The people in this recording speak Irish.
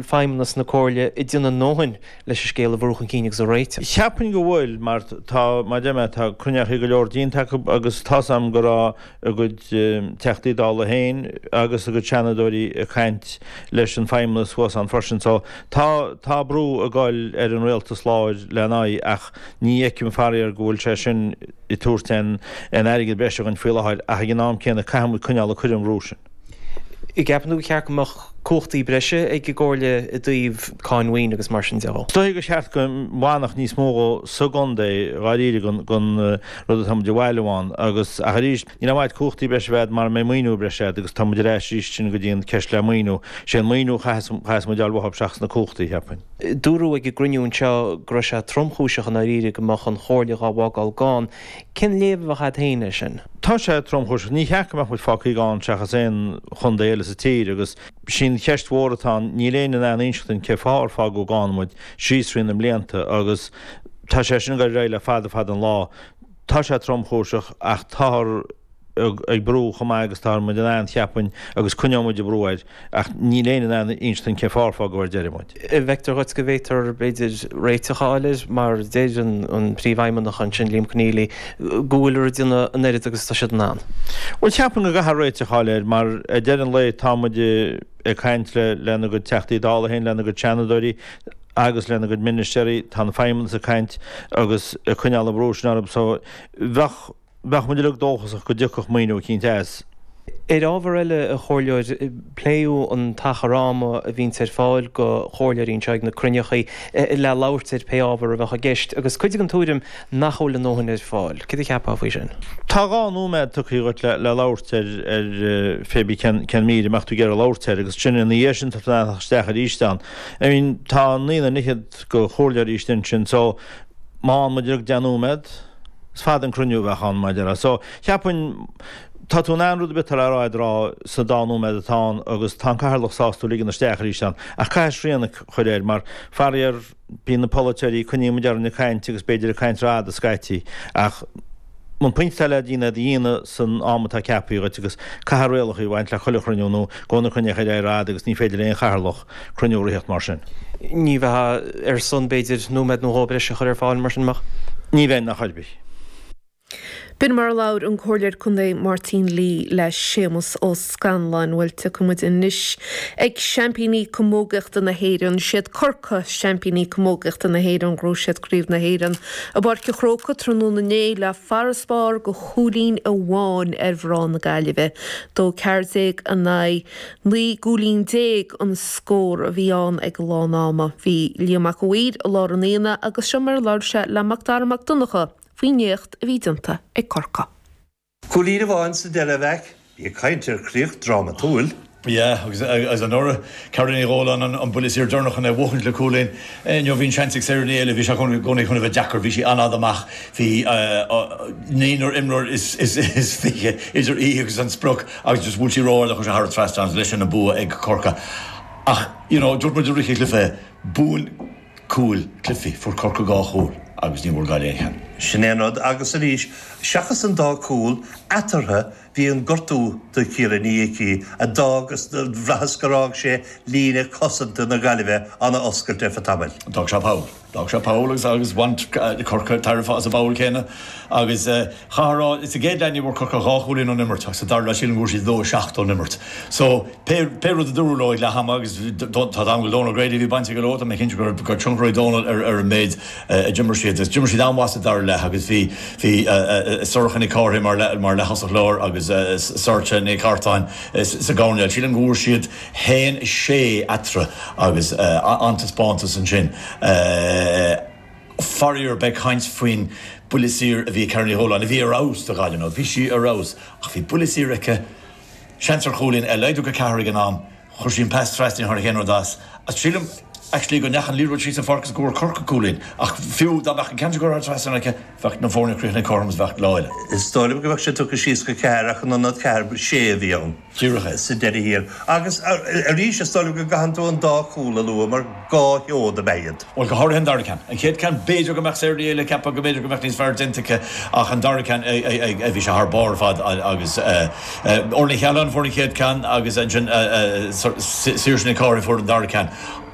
feidhmeannas na comhairle ag déanamh a ndóthain leis an scéal a bhrú chun cinn agus a réiteach. Cheapfainn go bhfuil, mar tá, mar a deir mé, tá cruinneachaí go leor déanta againn agus tá's agam go raibh ár gcuid Teachtaí Dála féin agus ár gcuid Seanadóirí ag caint leis an bhfeidhmeannas thuas ann freisin so tá, tá brú ag goil ar an Rialtas láir lena aghaidh ach ní fheicim faraor go bhfuil sé sin ag tabhairt aon airgead breise dhuinn faoi láthair ach ag an am céanna caithfimid coinneáil ag cur an bhrú sin. gceapann tú go mba cheart go mbeadh cumhachtaí breise ag an gcomhairle i dtaobh cáin mhaoine agus mar sin de? Is dóigh go mba cheart go bhfanfadh níos mó dhe sa gcontae dháiríre den rud atá muid a bhailiú ann agus, ach arís, níl aon mhaith dhuit cumhachtaí breise a bheith a'd mara mbeidh maoiniú breise a'd agus tá muid ar ais arís sin go dtí an ceist le maoiniú. Sé an maoiniú chaitheas, chaitheas muid a fháil i dtosach seachas na cumhachtaí, cheapfainn. Dúradh ag an gcruinniú anseo go raibh sé tromchúiseach i ndáiríre go mbeadh an chomhairle dhá bhfágáil gann. Cén léamh a bheadh agat féin air sin? Tá sé tromchúiseach. Ní ceart go mbeadh muid fágtha gann seachas aon chontae eile sa tír agus sin an cheist mhór atá ann. Níl éinne in ann inseacht dúinn cén fáth ar fágadh gann muid síos thrí na blianta agus tá sé sin ag goil ar aghaidh le fada fada an lá. Tá sé tromchúiseach ach táthar. ag brú chomh maith agus atá muid in ann, cheapfainn, agus coinneoidh muid ag brú air, ach níl éinne in ann inseacht dúinn cén fáth ar fágadh ar deireadh muid. Feictear dhuit go bhféadfar, b'fhéidir, réiteach a fháil air, mar a deir an Príomhfheidhmeannach ansin, Liam Conneally, go bhfuil siad ag déanamh an oiread agus atá siad in ann. Bhuel, cheapfainn go gcaithfear réiteach a fháil air, mar ag deireadh an lae tá muid ag caint lenár gcuid Teachtaí Dála féin, lenár gcuid Seanadóirí agus lenár gcuid ministéaraí, tá an Feidhmeannas ag caint agus ag coinneáil an bhrú sin orthu, so bheadh. Bheadh muid uilig dóchasach go dtiocfadh maoiniú eicínt as. Ar ábhar eile, a Chomhairleoir, pléadh an t-achar ama a bhíonns ar fáil do Chomhairleoirí anseo ag na cruinneacha le labhairt ar pé ábhar a bheadh i gceist agus cuid den tuairim nach bhfuil a ndóthain ar fáil. Céard a cheapfá faoi sin? Tá dhá nóiméad tugthaí dhuit le labhairt ar phébí cén mír a mbeadh tú ag iarraidh labhairt air agus ansin ina dhiaidh sin tá tú in ann a theacht isteach aríst ann. I mean, tá naonúr déag is fiche de Chomhairleoirí istigh ansin so má fhaigheann muid uilig deich nóiméad, Is fada an cruinniú a bheadh ann amach ón lá. So, cheapfainn, tá tú in ann rud ar bith atá le rá a'd a rá sa dá nóiméad atá ann agus tá an Cathaoirleach sásta tú a ligean isteach arís ann. Ach caithfidh srian a chur air mar, faraor, bíonn na polaiteoirí, coinníonn muid orainn ag caint agus b'fhéidir ag caint r'fhada scaití seachas an pointe atá le déanamh, a dhéanamh san am atá ceapaithe dhuit agus caithfidh rialacha a bheith ag baint le chuile chruinniú nó gabhfaidh na cruinnithe ar aghaidh r'fhada agus ní féidir le aon Chathaoirleach cruinniú a ritheacht mar sin. Ní bheifeá ar son, b'fhéidir, nóiméad nó dhó breise a chur ar fáil mar sin, an mbeifeá? Ní bheinn ná ar bith. B'in mar a labhair an Comhairleoir Contae Martin Lee le Séamus Ó Scanláin. Bhuel, tiocfaidh muid anois ag seaimpíní camógaíochta na hÉireann. Siad Corcaigh, seaimpíní camógaíochta na hÉireann. Ghnóthaigh siad Craobh na hÉireann i bPáirc an Chrócaigh tráthnóna inné le farasbarr de chúilín amháin ar mhná na Gaillimhe, 1-14 in aghaidh. Naoi gcúilín déag an scór a bhí ann ag lán ama. Bhí Liam Mac an Mhaoir i lár an aonaigh agus seo mar a labhair sé le Mac Dara Mac Donncha faoin éacht a bhí déanta ag Corcaigh. Cúilín amháin sa deireadh, a Mhaic. Bí ag caint ar chríoch drámatúil. Yeah agus agus anuraidh Carrie Ní Dhóláin an an buille saor deireanach chun é a bhuachaint le cúilín. Inniu bhí an seans ag Sarah Ní Éilí bhí sé chun i gcónaí chun a bheith deacair bhí sí an-fhada amach. Bhí naonúr imreoir is fiche idir í agus an sprioc agus bhuail sí ró-ard é agus thar an trasnán agus leis sin an bua ag Corcaigh ach you know dúirt muid i rith an chluiche buann cúil cluichí, fuair Corcaigh dhá chúl agus ní bhfuair Gaillimh aon cheann. Sin é an rud agus arís seachas an dá cúl eatarthu Bhí an gortú do Ciara Ní Icí, a d'fhág bhraitheas gur fhág sé líne cosanta na Gaillimhe an-oscailte ar feadh tamaill. D'fhág sé poll. D'fhág sé poll agus agus bhain Corcaigh tairbhe as an bpoll céanna agus chaithfeá a rá sa gcéad leath ní bhfuair Corcaigh ach dhá chúilín ón imirt ach sa dara leath sílim go bhfuair siad 2 7 ón imirt. So pé pé rud a dúradh leo ag leath ama agus tá a fhios agam go bhfuil Donal Grady a bhí baint aige leo, tá mé cinnte go raibh tionchar ag Donal ar ar an méid a d'imir siad agus d'imir siad an-mhaith sa dara leath agus bhí bhí Sorcha Nic Cárthaigh mar mar leaththosach láir agus Sorcha Nic Cartáin sa gcoirnéal. Sílim go bhfuair siad fhéin a sé eatarthu agus an-taispeántas ansin. Faraor beidh caint faoin buille saor a bhí ag Carrie Ní Dhubhláin, a bhí ar fheabhas do Ghaillimh inniu bhí sí ar fheabhas ach bhí buille saor aici, seans ar chúilín, é a laghdú go ceathair ag an am. Chuir sí an pas trasna níor tháinig aon rud as. Sílim actually go ndeachaigh an liathróid síos an pháirc agus go bhfuair Corcaigh cúilín. Ach fiú dá mbeadh an ceann sin curtha trasna aici bheadh na foirne críochnaithe cothrom agus bheadh lá eile. Is dóigh liom go bheadh sé tugtha síos go ceathair ach in ionad ceathair ba sé a bhí ann sa deireadh thiar. Agus arís is dóigh liom go gcaitheann tú an dá chúl a lua mar, Dhá sheod ab ea iad. Bhuel, go háirithe an dara ceann. An chéad ceann, b'fhéidir go mbeadh Sarah Ní Éilí ag ceapadh go mb'fhéidir go mbeadh níos fearr déanta aici ach an dara ceann, bhí sé thar barr ar fad agus Orlaith Ní Chathaláin a fuair an chéad ceann agus ansin Saoirse Nic Cárthaigh a fuair an dara ceann.